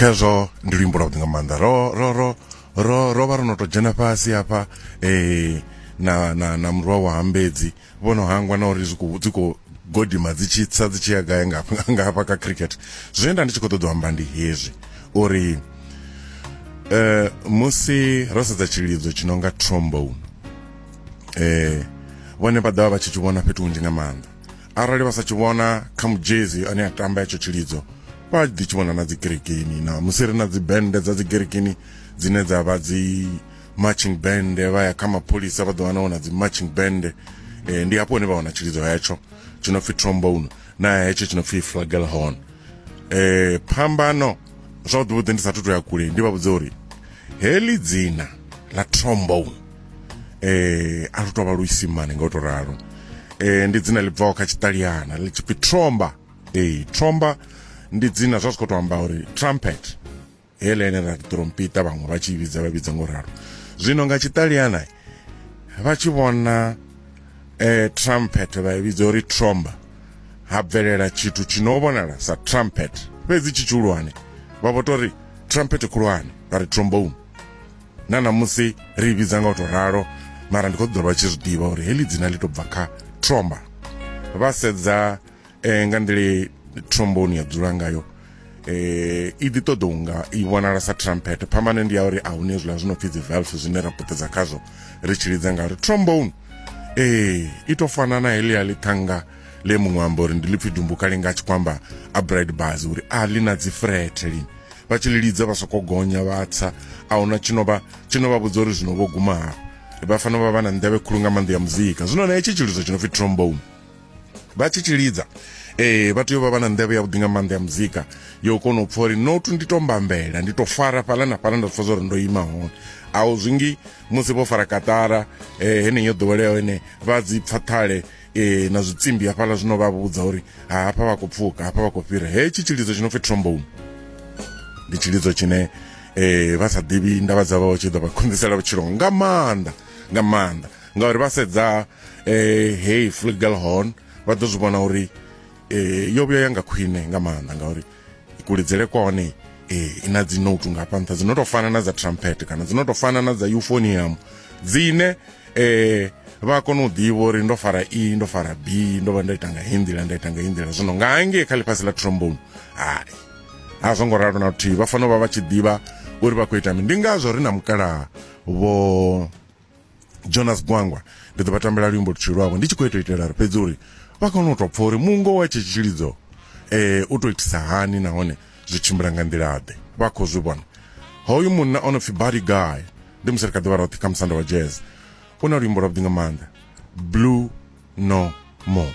khezwo ndi luimbo lwa vhuḓi nga maanḓa ro ro ro ro ro vha ro no to dzhena fhasi hafha eh na na na murwa wa hambedzi vhono hangwa na uri zwi dzi khou godima dzi tshi tsa dzi tshi ya gai nga nga hafha kha cricket zwine nda ndi tshi khou ṱoḓa u amba ndi hezwi uri eh musi ro sedza tshilidzo tshi no nga trombone eh vhone vha ḓovha vha tshi tshi vhona fhethu hunzhi nga maanḓa arali vha sa tshi vhona kha mujezi ane a tamba hetsho tshilidzo vha ḓi tshi vhona na dzi kerekeni na musi ri na dzi bende dza dzi kerekeni dzine dza vha dzi marching band vha ya kha mapholisa vha ḓo wana wana dzi marching band eh, ndi hafho hune vha wana tshilidzo hetsho tshi no pfi trombone na hetsho tshi no pfi flagelhorn eh phambano zwavhuḓi vhuḓi ndi sathu to ya kule ndi vha vhudza uri heli dzina la trombone eh a lu tovha luisimane nga u to ralo eh ndi dzina ḽi bvaho kha tshiṱaliyana ḽi tshipfi tromba eh tromba ndi dzina zwa zwi khou tou amba uri trumpet heḽa ene ra trompita vhaṅwe vha tshi vhidza vha vhidza ngo ralo zwino nga tshiṱaliyana vha tshi vhona eh trumpet vha vhidza uri tromba ha bvelela tshithu tshi no vhonala sa trumpet fhedzi tshi tshihulwane vha vho tori trumpet khulwane vha ri trombone na ṋamusi ri vhidza nga u tou ralo mara ndi khou ṱoḓa vha tshi zwi ḓivha uri heḽi dzina ḽi to bva kha tromba vha sedza eh, nga nḓila tromboni ya dzula ngayo eh i ḓi ṱoḓa unga i vhonala sa trumpet phambano ndi ya uri a hune hezwiḽa zwi no pfi dzi valve zwine ra puṱedza khazwo ri tshi lidza nga uri trombone eh i to fana na heḽia ḽithanga le muṅwe amba uri ndi ḽipfi dumbuka linga a tshi khou amba a bright bars uri a ḽi na dzi frethe lini vha tshi lidza vha soko gonya vha tsa a huna tshino vha tshino vha vhudza uri zwino vho guma hafha vha fanela vha vha na nḓevhe khulu nga maanḓa ya muzika zwino na hetshi tshilidzo tshi no pfi trombone vha tshi tshilidza eh vha tea u vha vha na nḓevhe yavhuḓi nga maanḓa ya muzika yo kona u pfa uri not ndi to mbambela ndi to fara fhala na fhala nda pfa zwa uri ndo ima hone a u zwingi musi vho fara katara eh heneyo ḓoweleaho ene vha dzi pfa ṱhale e, na zwitsimbi hafhaḽa zwino vha vhudza uri ha hafha vha khou pfuka hafha vha khou fhira hetshi tshilidzo tshi no pfi trombone ndi tshilidzo tshine um vha sa ḓivhi ndavha dza vha tshi ḓo vha khonḓisela vhutshilo nga maanḓa nga maanḓa ngauri vha sedza um heyi flugelhorn vha ḓo zwi vhona uri eh, yo vhuya yanga khwine nga maanḓa ngauri kuledzele kwa hone eh, i na dzinotu nga hafha nṱha dzi no tou fana na dza trumpet kana dzi no tou fana na dza euphonium dzine eh, vha kona u ḓivha uri ndo fara e ndo fara b ndo vha nda ita nga hindila nda ita nga hindila zwino nga hangei kha ḽifhasi ḽa trombone hai a zwo ngo ralo na luthihi vha fanela u vha vha tshi ḓivha uri vha khou ita mini ndi ngazwo ri na mukalaha vho jonas gwangwa ndi ḓo vha tambela luimbo luthihi lwavho ndi tshi khou ita itela uri fhedzi uri vha kone u tou pfha uri mungo wa tshi tshilidzo um u tou itisa hani nahone zwi tshimbila nga nḓilaḓe vha khou zwi vhona hoyu munna o no pfi body guy ndi musi ri kha ḓivha roṱhe kha musanda wa jazz u na luimbo lwavhuḓi nga maanḓa blue no more